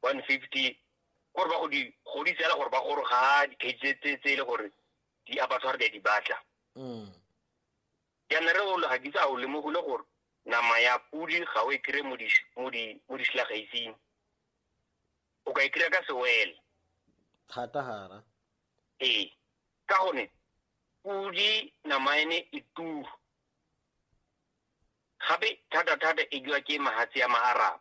one fifty gore ba go di godisa fela gore ba gore ga di-cage tse- tse tse e le gore di abatshware di a di batla Mm. jaana re olo ga kitse a o lemogile gore nama ya podi ga o e kry-e mo di- mo di- mo disilagaising o ka e kry-a ka sewele thata gara ee ka gone podi nama ene e turu gape thata-thata e jwa ke mahatse ya maaraba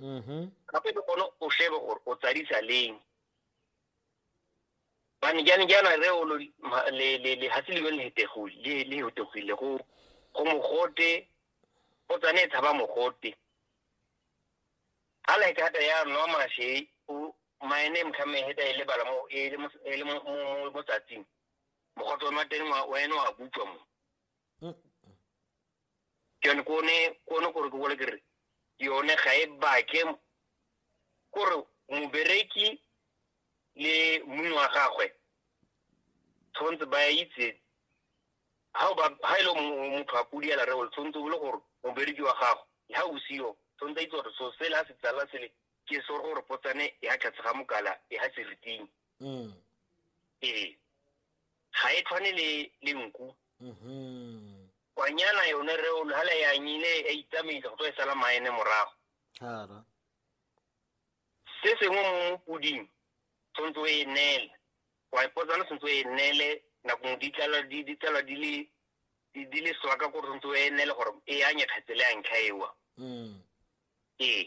mm-hmm. gape le gone o shebe gore o tsadisa leng bane jane jaana re o lehatshe le yone le hetegile go go mogote o tsane e tshaba mogote ga like hata ya nwa mashe maene mtlhame heta e lebala mo e, e le mo tsatsing mogote o nwa teng wa ene wa butswa mo Mm. ke yone kone kone gore ke bole ke re yone ga e bake kore mobereki le mong wa gagwe tshwanetse ba itse ha ba ha ile mo- motho a kudi ala reo tshwanetse o le gore mobereki wa gago ha o siyo tshwanetse a itse gore so sela se tsala sele ke so gore potsane ya tlhatse ga mokala e ha seriting mm. ee ga e tshwane le le nku mm-hmm. kwanyana yone re o hala ya nyile e itsamaisa go tswa e sala maene morago hara se sengwe mo mopoding tshwanetse o e neele wa ipotsana tshwanetse o e neele nakong di tlala di di tlala di le di le swaka gore tshwanetse o e neele gore e anye kgetse le a ntlha ewa mm. ee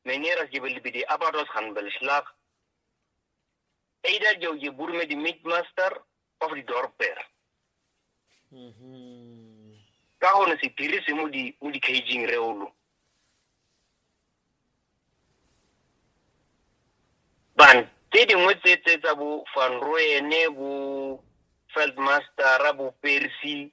Meneer, als je wil bij die abattoirs gaan beslag, either je, je boer met die meatmaster of die dorper. Mm -hmm. Ka hone se dirise mo di mo di caging reolo. Ban tse dingwe tse tse tsa bo Van Rooyen bo Feldmaster bo Percy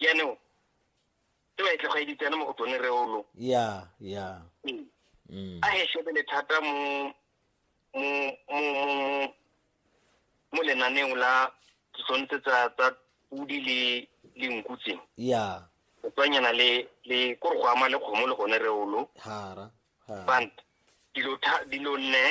jaanong e ba e tlogeditsene mo go tsone reolo ya ya mm. Mm. a e shebele thata mo mo lenaneong la tshwanetse tsa tsa pudi le le nku tse ya o tswanyana le le kore go ama le kgomo le gone reolo hara bant dilo dilo neela